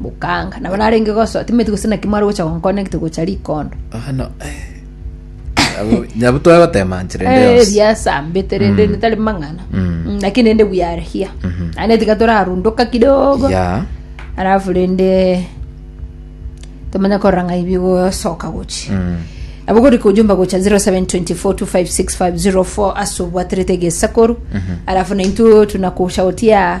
Bokanga, nabo narenge gosoa, timaeti gose naki mware gocha gonkona egete gocha rikondo. Bono, eh, abo- nyabu twagotemanchire Eh, ndeos ebiasambete rende netari mang'ana Mm. Mm, lakini rende we are here ane tiga torarunduka kidogo ya alafu rende tomanya korora ng'a ibigosoka gochi Mm. abo gori kujumba gocha 0724256504 ase obwaterete egesakoru alafu naintu tunakusha gotia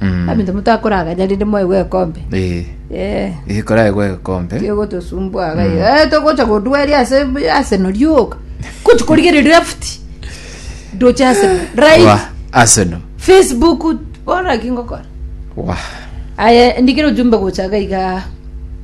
Abanto motakoraganya rende mwaigwe ekombe. Eh, Eh, eh, koraegwe ekombe. tiogotosumbua iga iga. Eh, togocha godweria ase Arsenal rioka. Gochi korigereria left. Doche Arsenal. Right. Wa Arsenal. Facebook bona ki ngokora. Wa. Aya ndikira ujumbe gocha iga iga.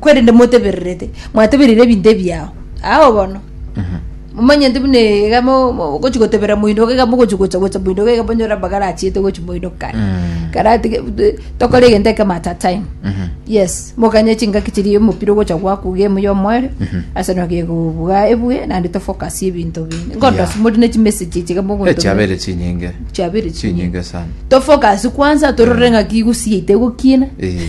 kwerende motebererete mwateberire ebinto ebiao ao bono momanyete buna iga mo- mo- ogochi gotebera moindoka iga mogochi gocha gocha moindoka iga monyore amagara achiete gochi moindoka Mm. karatige tokore egento ekemo at a time Mhm. yes mokanye chingaki chiria omopira ogocha gwaku game ya omwere ase nabo gekobuga ebuge naende tofocus ebinto binde Yeah. ngondosi mori ne chimessage chiga mogonto echiabere chinyinge chiabere chinyinge chinyinge sana tofocus kwanza torore ng'aki egusi yaito egokina Eh.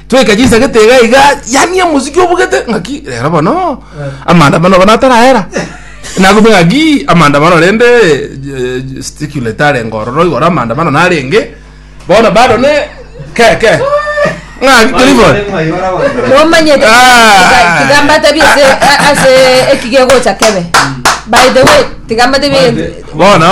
Tweka chisagete iga iga yaani omosiki obugete ng'aki rero bono amaandamano bono atarahera nakumbe ng'aki amaandamano rende eh, gesticulate arenge ororo igoro amaandamano narenge bono bado ne keke ng'aki teri bono nomanyete Ah. tiga mbatebie ase ase ekigegocha kebe by the way tiga mbatebie egento bono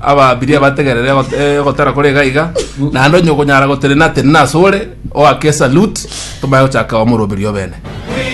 Ababiria bategerere ogot- eh, ogotera kore iga iga, naende onye okonyara gotenena tenena asore, oake esalute, tomanye gochaka kwamoroberia obene.